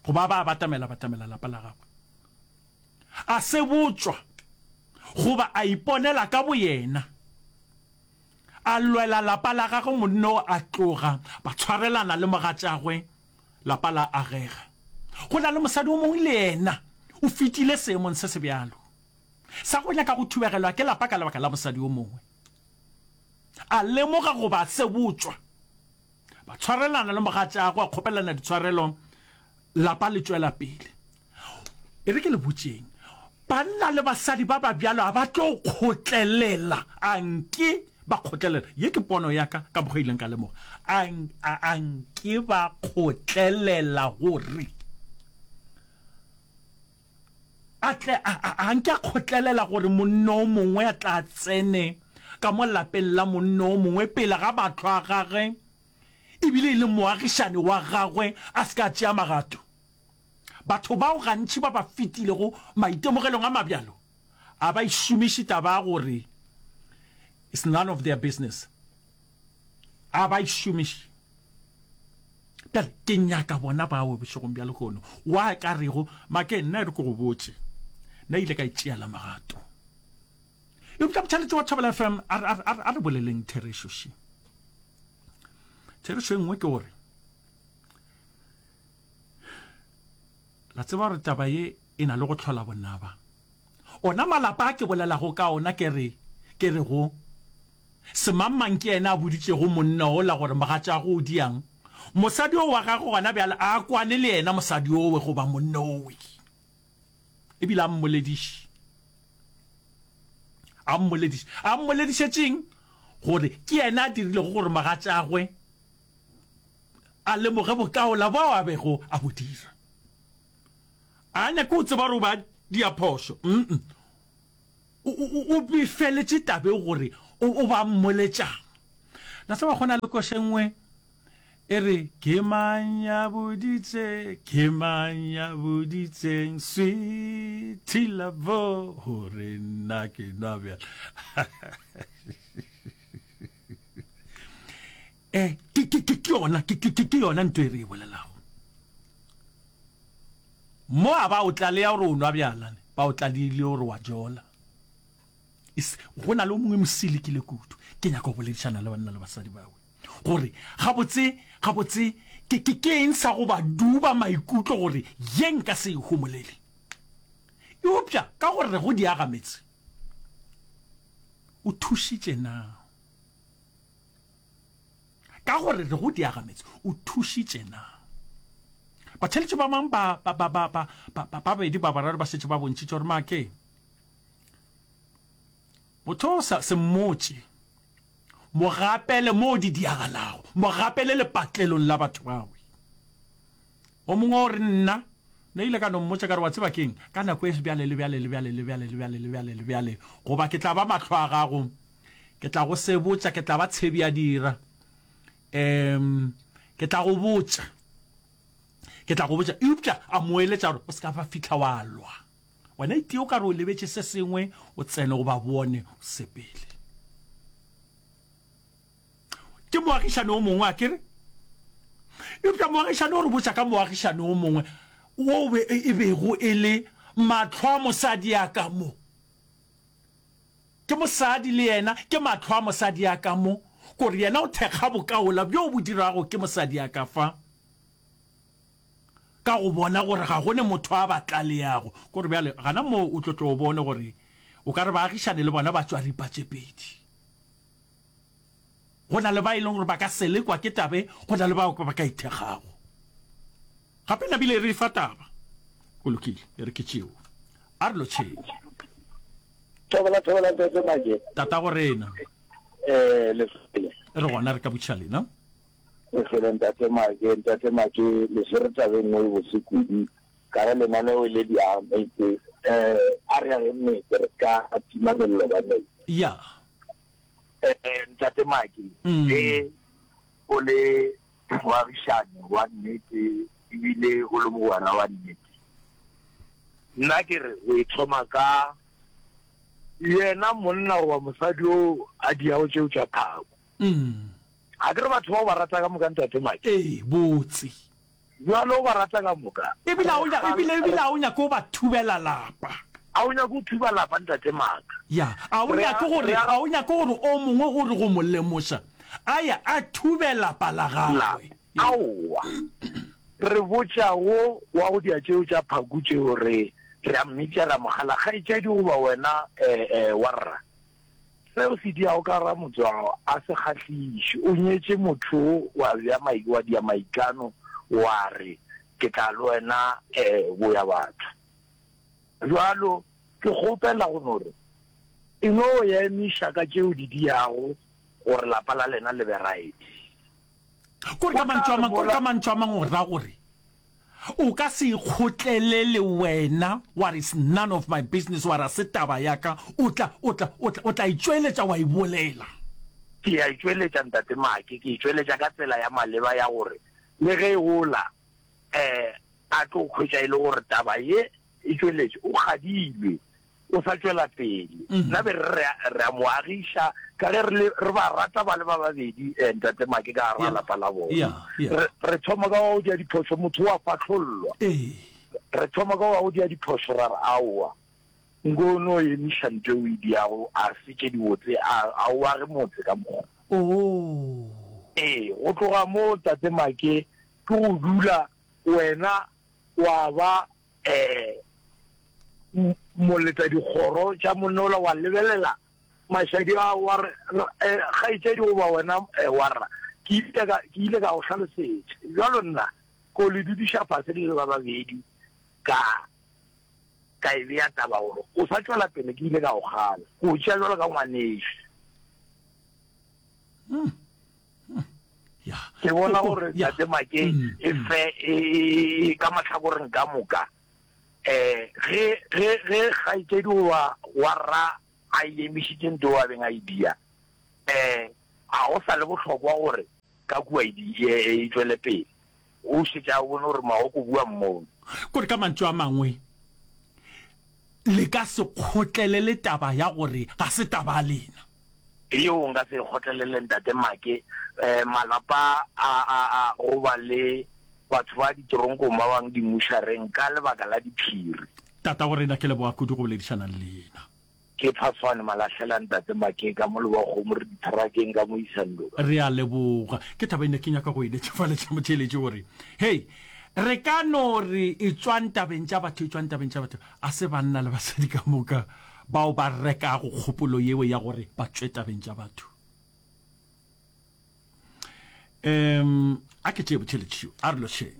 goba ba batamela batamela lapa la gagwe a se botswa goba a iponela ka boyena a lwela lapa la gagwe monne o a tloga ba tshwarelana le mogatšagwe Lapa la agega. Go na le mosadi o mongwe le yena o fetile seemong se se bjalo, sa go nyaka go thubegelwa ke lapa ka lebaka la mosadi o mongwe. A lemoga goba a se botšwa. Ba tshwarelana le mogatšagwe, a kgopelana ditshwarelo, lapa le tšwela pele. E re ke le botšeng, banna le basadi ba ba bjalo ga ba tlo kgotlelela. A nke ba kgotlelela? Ye ke pono ya ka, ka mokgwa ileng ka lemoga. A, a, a nke ba kgotlelela gore a tle, a, a, a nke a kgotlelela gore monna o mongwe a tla tsene ka mo lapeng la monna o mongwe pele ga batho a gagwe, ebile e le moagišane wa gagwe, a se ka tšea magato? Batho bao gantši ba ba fetilego maitemogelong a mabjalo a ba e šomiše taba ya gore it's none of their business. A ba e šomiše. Bjale ke nyaka bona bao bošegong bja lehono wa ka rego make nna re ke go botše nna ile ka e tšeela magato. Eupša motšhaletši wa Thobela FM a re, a re boleleng therešo še. Therešo e nngwe ke gore La tseba gore taba ye e na le go tlhola bonaba. Ona malapa a ke bolelago ka ona ke re, ke re go, Semangmang ke yena a boditšego monna ola gore mogatšago o diang, mosadi o wa gagwe gona bjale a kwane le yena mosadi owe goba monna owe, e bile a mmolediše. A mmolediše. A mmoledišetšeng? Gore ke yena a dirilego gore mogatšagwe a lemoge bokaola bao a bego a bo dira. A nyake go tseba gore o ba dia phošo, mm, o befeletše tabeng gore o ba mmoletšang. La tseba go na le koše nngwe e re, Ke mang ya boditse, ke mang ya boditseng, sweetie labo, gore nna ke nwa bjala. eh ke ke ke ke yona ke ke ke yona ntwe e re e bolelago mo a ba o tlaleya gore o nwa bjalane ba o tlalile gore wa jola go na le o mongwe mosilikile kudu ke nyaka go boledišana le banna le basadi bawe gore gabotse gabotse ke ke ke eng sa go ba duba maikutlo gore ye nka se e homolele eopša ka gore go diaga metse o thušitše na ka gore re go diagametse o thušitše na batheletši ba mang ba ba ba ba ba ba bedi ba bararo ba setse ba bontšitše gore make motho sa se mmotše mogapele mo di diagalago mogapele lepatlelong la batho bawe O mongwe o re, Nna, ne ile ka no mmotša ka re, Wa tseba ke'ng? Ka nako e bjale le bjale le bjale le bjale le bjale le bjale le bjale, goba ke tla ba mahlo a gago, ke tla go se botša, ke tla ba tshebi ya dira. Um, ke tla go botša, ke tla go botša. Eupša a mo eletša gore, O se ka ba fihla wa lwa. Wena itee o ka re o lebetše se sengwe, o tsene go ba bone, o sepele. Ke moagišani o mongwe, akere? Eupša moagišani o re botša ka moagišani o mongwe wo e bego e le mahlo a mosadi ya ka mo. Ke mosadi le yena, ke mahlo a mosadi ya ka mo, gore yena o thekga bokaola bjo bo dirago ke mosadi ya ka fa, ka go bona gore ga go ne motho a ba tlaleago. Gore bjale gana moo o tlo tle o bone gore o ka re baagišane le bona ba tšwa ripa tše pedi. go na le ba e leng gore ba ka selekwa ke tabe go na le bao ba ka ithegago gape nabile e re fa taba go lokile e re ke tšeo a re lotšheng thobela thobela tete maje tata go rena eh le re gona re ka butšha lena e fele ntate maje ntate maje le se re tabeng mo e bosekudu Ka ge lenaneo le di ametše, a re ageng metse re ska tima mello ka metse. Ya. Ntate Maki, ge o le moagišani wa nnete e bile o le mogwera wa nnete, nna ke re o e thoma ka yena monna goba mosadi yo a diyago tšeo tša phako. Ga ke re batho ba o ba rata ka moka, Ntate Maki? Ee, botse. Bjalo o ba rata ka moka. Ebile a o nya, ebile, ebile a o nyake go ba thubela lapa. A o nyake go thuba lapa, Ntate Mark? Ya. A o Re a, nyake gore, re a. a o nyake gore o mongwe gore go mo lemoša, a ye a thube lapa la La. gagwe? Ya. Aowa. Re botša wo wa go dia tšeo tša phaku tšeo, re, re a mmitša, ra mo kgala, kgaetšedi goba wena, ee, ee, warra. Se o se diago ka ra motswao a se kgahliše. O nyetše motho wa bja mai, wa dia maitlano, wa re, Ke tla le wena e go ya batho. Bjalo, ke kgopela go no re, e no ya emiša ka tše o di diago gore lapa la lena le be right. Kore ka mantšu a mang, kore ka mantšu a mang o ra gore o ka se ikgotlele le wena wa re is none of my business wa ra se taba ya ka o tla o tla o tla o tla itšweletša wa ibolela. Ke ya itšweletša ntate Make, ke itšweletša ka tsela ya maleba ya gore le ge e gola um a tlo hwetša e le gore taba ye e tšweletše o kgadilwe. o sa tšwela pele. Nna be re re re a mo agiša ka ge re le re ba rata ba le ba babedi eh, ntate Make ka gara lapa la bona. Yeah, yeah. Re re thoma ka wa go dia diphoso motho wa fahlollwa. Ee. Re thoma ka wa go dia diphoso ra re aowa. Nko no emiša ntho e o e diago a se tše dibotse a a o age motse ka mokgwa. Oh. Ee, go tloga moo ntate Make ke go dula wena wa ba um moletadikgoro tša monola wa lebelela mašadi a wa re um kgaetšedi goba wena um warra ke ile ka go hlalosetša bjalo nna ko le dudiša fase le le ba babedi ka ka e beya taba gore o sa tšwela pele ke ile ka go gana o tšea jalo ka ngwaneši hmm. ke bona gore tate makeng mm, e mm. fe e, e, e, ka matlhakoreng ka moka um ge kgaitsedi goba wa rra a emišitseng to a beng a idea um ga go sa le botlhokwa gore ka kua e tswele pele O šetše a bone gore Magoke o bua mmone. Gore ka mantšu a mangwe, le ka se kgotlelele taba ya gore ga se taba ya lena. Yeo nka se e kgotlelele, Ntate Make. Malapa a, a, a goba le batho ba ditoronkong ba bangwe dimušareng ka lebaka la diphiri. Tatagorena ke leboga kudu go boledišana le lena. Ke Phafane Malahlela Ntate Makee ka mo Lebakgomo re ditharakeng ka mo Isandoka. Re a leboga. Ke taba e ne ke nyaka go e netšafaletša motheeletši gore hei re ka no re e tšwa ntabeng tša batho e tšwa ntabeng tša batho a se banna le basadi ka moka bao ba rekago kgopolo yeo ya gore ba tšwe tabeng tša batho. Um a ke tšee botheeletši yo a re lošeng.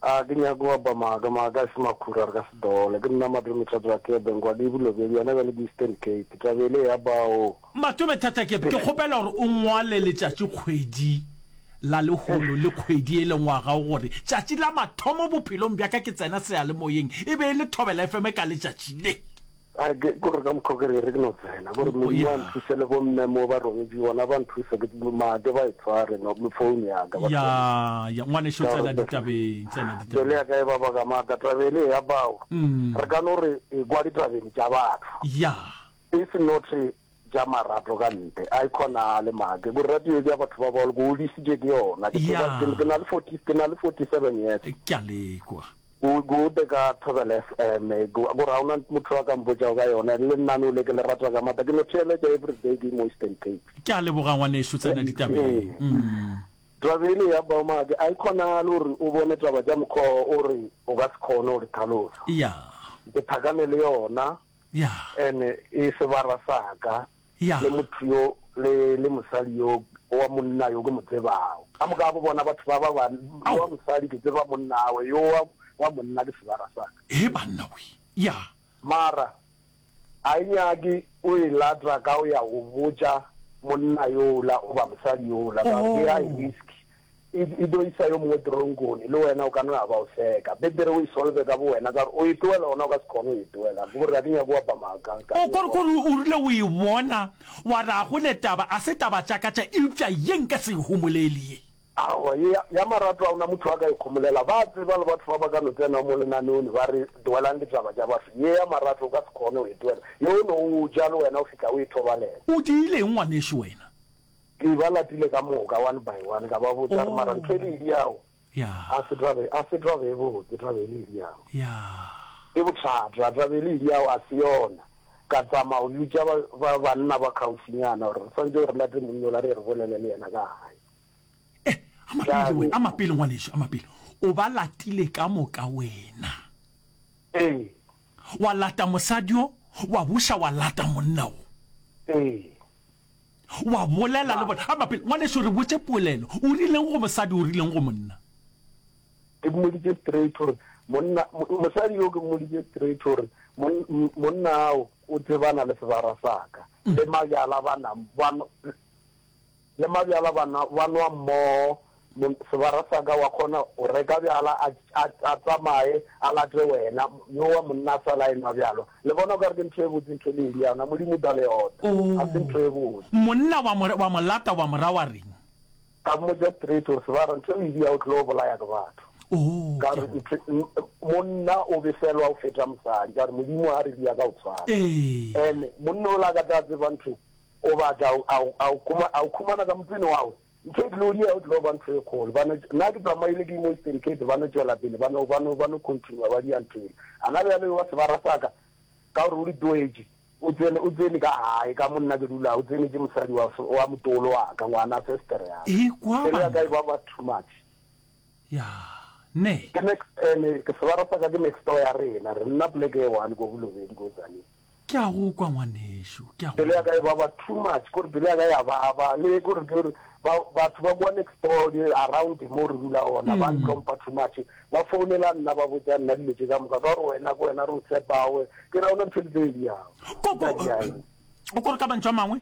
A ke nyake go apa maaka, maaka a se makhura, re ka se dole. Ke nna Matome Thata Kebe, Nkwadi Bulobye, bjana bja le bo Eastern Cape. Taba e le ya bao. Matome Thata Kebe, ke kgopela gore o ngwale letšatši kgwedi la lehono le kgwedi e le ngwaga o gore tšatši la mathomo bophelong bja ka ke tsena seyalemoyeng e be e le Thobela FM ka letšatši le. A ke gore ka mokgwa ke re re ke no tsena gore Modimo a Yeah. nthuse le bomme mo ba rogetši gona ba nthuse ke make ba e tshware no mo phone ya ka ba ya tsena. ya ngwanešu Ka tsena gore- ditabeng tsena Bjale ditabeng ya ka e ba baka maaka tabele ya bao Mm. re ka no re e kwa ditabeng tša batho ya e se note bja marato ka ntle, a e kgonagale make, gore radio e bja batho ba bagolo, ke godisitšwe ke yona, ke tseba, Yeah. ke, ke na le 40, ke na le 47 years. ke a lekwa Go gode ka Thobela FM, eh, go go ra ona motho a ka mpotšago ka yona, le nna no le ke le rata ka mata, ke no theeletša every day ke mo Eastern Cape. ke a leboga ngwaneso tsena ditabeng mm. Drabele ya Baumake, a e kgonagale gore o bone taba tša mokgwa o re o ka se kgone go di tlhalosa. ya Ke thakane le yona. Ene e sebara sa ka, le motho yo, le, le mosali yo, wa monna yo ke mo tsebago. Ka moka bo bona batho ba ba ba, yo wa mosali ke tseba monnawe, yo wa, wa monna ke sebara sa ka. Hee banna we! Ya. Mara a e nyake o e latra ka o ya go botša monna yola goba mosali yola, ka gore ke a e risk. E, e tlo isa yo mongwe teronkone, le wena o ka no ya ba o seka. Betere o e solve ka bowena, ka gore o e tloela ona o ka se kgone go e tloela. Ke gore ga ke nyake go apa maaka. Ka O, gore, gore o rile o e bona, wa re a go le taba, a se taba tša ka tša, eupša ye nka se e homoleli ye. Aowa, ye ya, ya marato ga ona motho a ka e homolela. Ba a tseba le batho ba ba ka no tsenago mo lenaneone ba re, Tloelang ditaba tša batho. Ye ya marato o ka se kgone go e tloela. Ye o no o ja le wena o fihla o e thobalela. O diileng ngwanešu wena? Ke ba latile ka moka one by one ka ba botša re mara ntho e le idiago a se tabe a se tabe e botse tabe e le idiago ke bothata tabe e le idiago a se yona ka tsamao le bitša ba banna ba khaufinyana gore re swantse re late monna ola re re bolele le yena ka gae eh a mapele wena a mapele ngwaneso a mapele o ba latile ka moka wena ee wa lata mosadio wa buša wa lata monna o ee wa bolela le bona a mapele ngwaneso re botse polelo o rileng go mosadi o rileng go monna ke mmoditse straight gore monna mosadi yo ke mmoditse straight gore monna ao o tsebana le sebara saka le mabjala bana le mabjala bana ba nwa mmogo Sebara sa ka, wa kgona go reka bjala a tsamaye a late wena. Yowa monna a sa la enwa bjalo. Le bona o ka re ke ntho e botse ntho e leng bjalo na? Modimo o tla le ota. Ga se ntho e botse. Monna wa mo, wa mo lata wa mo ra wa reng? Ka mmotša straight gore, Sebara, ntho e o e diyago o tlile go bolaya ke batho. Ka re, Ntho, monna o befelwa go feta mosadi. Ka re, Modimo a re diya ka go tshwana. And monna o la ka tla tseba ntho, o batla a, a, a o khumana ka mopine wa go. Mphe Gloria o tlo ba ntho e kgolo. Ba no, na ke tsamaile ke mo Eastern Cape, ba no tšwela pele, ba no, ba no, ba no continua ba dia nthwele. A na bjalo ewa sebara sa ka, ka gore o di tloetše. O tsene, o tsene ka gae, ka mo nna ke dulago, o tsenetše mosadi wa, wa motolo wa ka, ngwana sister ya ka. Ekwa Pelo ya ka e banna. baba too much. Ya, neh? Ke next, ene ke sebara sa ka ke next door ya rena, re nna poleke e one ko Bolobedi ko Tzaneen. Ke a go kwa ngwanešu, ke a go Pelo ya kwa. ka e baba too much, kore pelo ya ka ya baba, le kore ke re ba, batho ba kwa next door le around mo re dula gona ba ntlhompha too much, ba founela nna ba botša nna dilo tše ka moka, ka gore wena ke wena re o tshepago, ke ra gona ntho di tlo e diago, Ko, o tla ko, diaeng? o kore ka mantšu a mangwe?